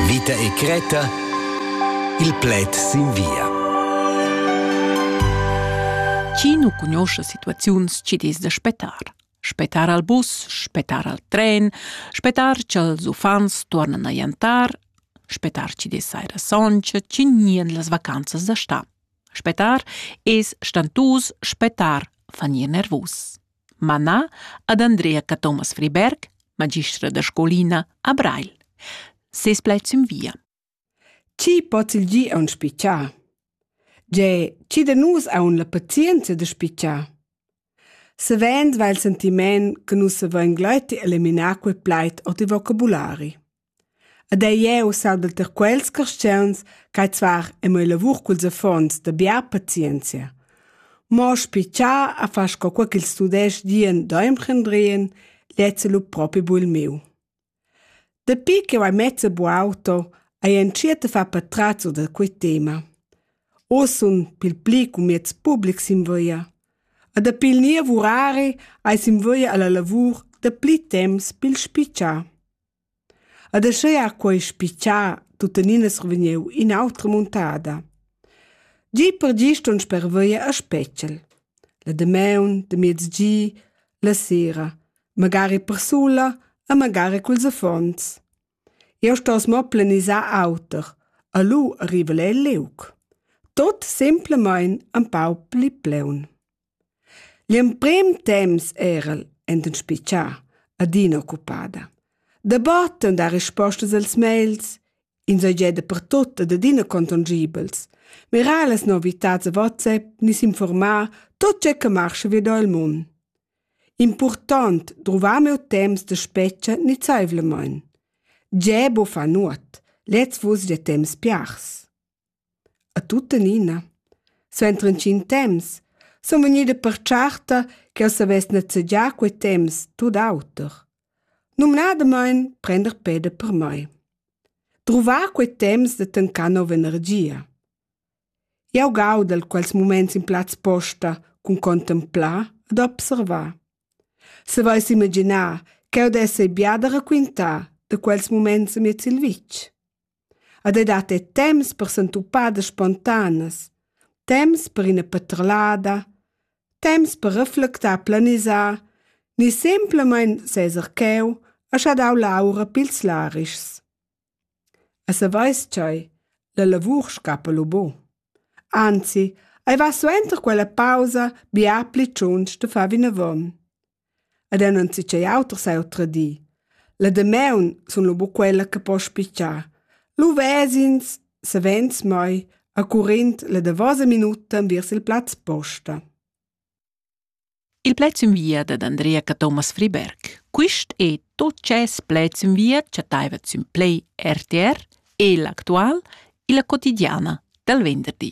Vita e Creta Il pled sin via Chi nu cugnuoscha situaziuns chi'd es da spettar? Spettar al bus, spettar al tren, spettar cha'ls uffants tuornan a jantar, spettar chi'd es saira soncha, chi gnien las vacanzas da stà. Spettar es stantus, spettar fa gnir nervus. manà ad Andrea Cathomas Friberg, magistra da scolina a Breil. Ses plaid sün via. Chi pots il gi aun spichar? Ge, chi da nus aun la pazienza da spichar? Savend va il sentiment che nus avain gleiti eliminar quel plaid o ti vocabulari. Ed ei jeu sembel tier quels carstgauns ch'ei zvar e mo ei lavur culs affons da bia pazienzia. Mo spi cha a far sco quei ch'ils tudestgs dien da emprendrien, lezza lu propi buc il miu. Dapi ch'jeu hai mezza bu auto, hai entschiet a far patratzo da quei tema. Oz sun pil pli cun mieds publics in via. E dapi il niev urari hai sin via alla lavur da pli temps pil spitgar. Ed aschia ha quei spitgà tuttenina survegniu in'autra muntada. Gi per gi ston sperveir a Spetgel. La damaun, de miezgi, la sera, magari persula e magari culs affons. Eu stos mo planisar auter, a lu arriva el liug. Tot semplamain empau pli pleun. L'emprim temps era el enten spitgà, adina occupada. Dabatten dar rispostas als mails, insatgè dapertut ed adina contongibels, mirar las novitats a WhatsApp ni s'informar tot tge che marscha vi da il mund. Important druvar meu temps da spetga nizaivlamain. Tgè bo fa nuot, lez vus gia temps piars. A tuttenina, suenter intgin temps, sun vegnida pertscharta ch'el savess nezegiar quei temps tut auter. Numnadamain prender peda per mei. Druvar quei temps da tancar nova energia. Jau gaudel quels muments in plaz posta cun contemplar ed observar. Savais imaginar ch'eu dess ei bia da raquintar da quels muments amiez il vitg? Ed ei dat era temps per sentupadas spontanas, temps per ina patrolada, temps per reflectar, planisar ni semplamein seser cheu a schadar l'aura pils larischs. E saveis tgei, la lavur scappa lu bu. Anzi, ei va suenter quella pausa bia pli tschunsch da far vinavon. ed el non si tgei auter seu tradir. La damaun sun lu bu quella che po spitgar. Lu ves'ins, savens mai, a currind la davosa minuta enviers il plaz posta. Il plaz in via dad Andrea Cathomas Friberg. Quist è tot ces plaz in via chattaiva sün Play RTR e l'actual illa quotidiana dal venderdi.